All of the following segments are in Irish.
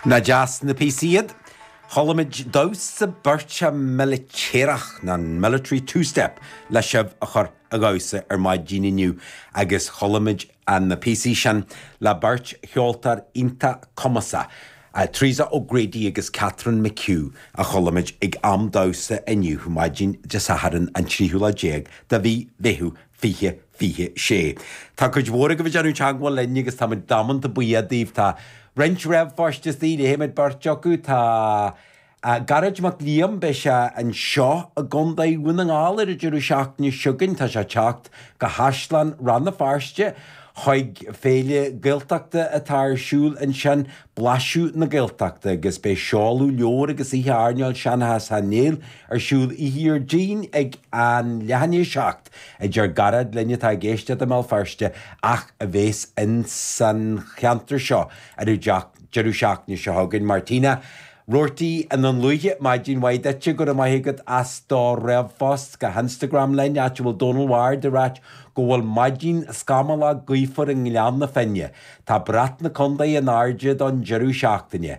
Nach deas na píosaí iad? Chualamid damhsa beirte militéarach, nó an Military Two Step le sibh a chur a dhamhsa ar maidin inniu agus chualamid na píosaí sin le beirt cheoltóir iontach cumasach, Teresa O'Grady agus Catherine McHugh, a chualamid ag am damhsa inniu, maidin Dé Sathairn an tríú lá déag de mhí Mheitheamh fiche 26. Tá cuid mhór agaibh ag déanamh teagmhála linn agus táimid damanta buíoch daoibh. Tá roinnt ríomhphoist is léifimid, beirt acu. Tá Gearóid Mac Liam, beidh sé anseo i gContae Dhún na nGall ar an deireadh seachtaine seo chugainn. Tá sé ag teacht go hÁislann Rann na Feirste chuig féile Gaeltachta atá ar siúl ansin, Blaiseadh na Gaeltachta, agus beidh seoladh leabhar agus oíche airneáil Seanchas Sheáin Néill ar siúl oíche Dhéardaoin ag an leath i ndiaidh a seacht. a deir Gearóid linn atá ag éisteacht i mBéal Feirste ach a bheas in san cheantar seo ar an deireadh seachtaine seo chugainn. Martina, Roarty i nDún Lúiche, maidin mhaith duitse, go raibh maith agat as do ríomhphost go hInstagram linn, áit a bhfuil Dónal Ward ag ráit go bhfuil maidin scamallach gaofar i nGleann na Finne. Tá brat na contae in airde don deireadh seachtaine.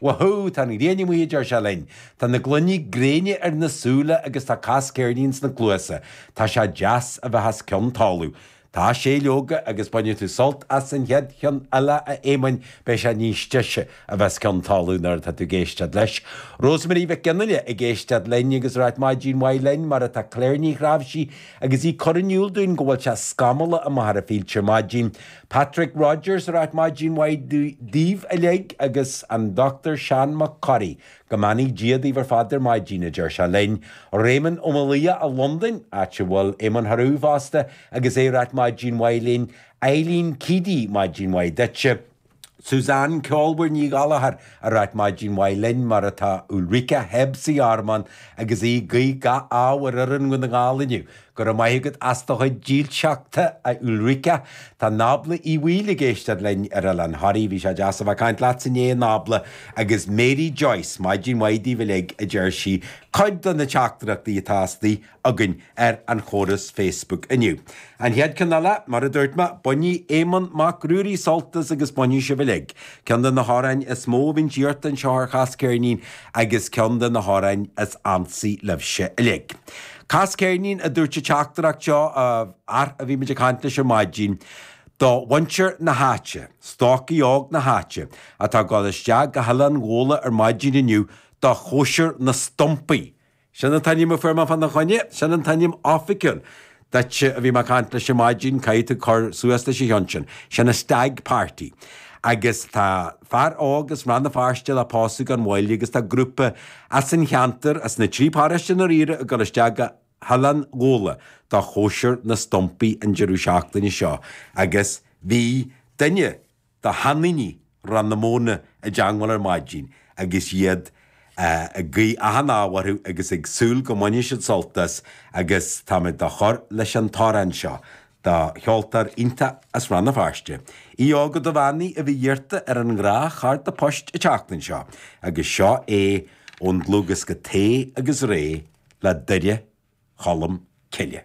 Wahoo! Tá an ghrian amuigh, a deir sé linn. Tá na gloiní gréine ar na súile agus tá Cas Ceirnín sna cluasa. Tá sé deas a bheith as cionn talamh. Tá, sé, leoga, agus bainfidh tú sult as an chéad cheann eile, a Éamoinn, beidh sé níos deise a bheith as cionn talamh nuair atá tú ag éisteacht leis. Rosemary Mhic Fhionnghaile ag éisteacht linn agus ag ráit maidin mhaith linn, mar atá Claire Ní Ghráibhsí agus í ag cur in iúl dúinn go bhfuil sé scamallach i Machaire Fíolta ar maidin. Patrick Rodgers ag ráit maidin mhaith daoibh uilig agus an Dr Seán Mac Corraidh, go mbeannaí Dia daoibh ar fad ar maidin, a deir sé linn. Réamonn Ó Maolaodha i Londain, áit a bhfuil Éamonn Theroux fosta agus é ag ráit maidin mhaith linn. Eileen Keady maidin mhaith duitse. Suzanne ceolmhar Ní Ghallchóir ag ráit maidin mhaith linn mar atá Ulrika Hebb sa Ghearmáin agus í ag guí gach ádh ar fhoireann Dhún na nGall inniu. Go raibh maith agat as do chuid dílseachta, a Ulrika. Tá Nábla Uí Bhaoill ag éisteacht linn ar Oileán Thoraí. Bhí sé deas a bheith ag caint leat inné a Nábla. Agus Mary Joyce, maidin mhaith daoibh uilig, a deir sí. Cuid de na teachtaireachtaí atá istigh againn ar an chóras Facebook inniu. An chéad cheann eile, mar a dúirt mé, bainfidh Éamonn Mac Ruairí sult as agus bainfidh sibh uilig. Ceann de na hamhráin is mó a bhíonn iarrtha anseo ar Chas Ceirnín agus ceann de na hamhráin is ansaí libhse uilig. Cas ceirnín, a dúirt an teachtaireacht seo, a bhí muid ag caint leis ar maidin, do mhuintir na háite, stocaí óg na háite, atá ag dul isteach go hOileán Ghuala ar maidin inniu do chóisir na stumpaí. Sin an t-ainm a fuair mé fá na choinne, sin an t-ainm oifigiúil duit, a bhí mé ag caint leis ar maidin, caithfidh tú cur suas leis ach cionn is sin, sin an stag party agus tá. fear óg as Rann na Feirste le pósadh gan mhoill agus tá grúpa as an cheantar, as na trí paróiste dáiríre ag dul isteach go hOileán Ghabhla do chóisir na stumpaí an deireadh seachtaine seo agus bhí duine de sheandaoine Rann na Móna i dteangmháil ar maidin agus iad ag guí achan ádh orthu agus ag súil go mbainfidh siad sult as agus tá muid ag cur leis an t-amhrán seo de cheoltóir iontach as Rann na Feirste, Aodh Óg Ó Duibheannaigh a bhí iarrta ar go leor cártaí poist an tseachtain seo agus seo é ón dlúthdhiosca Tae agus Ré le Doire Cholm Cille.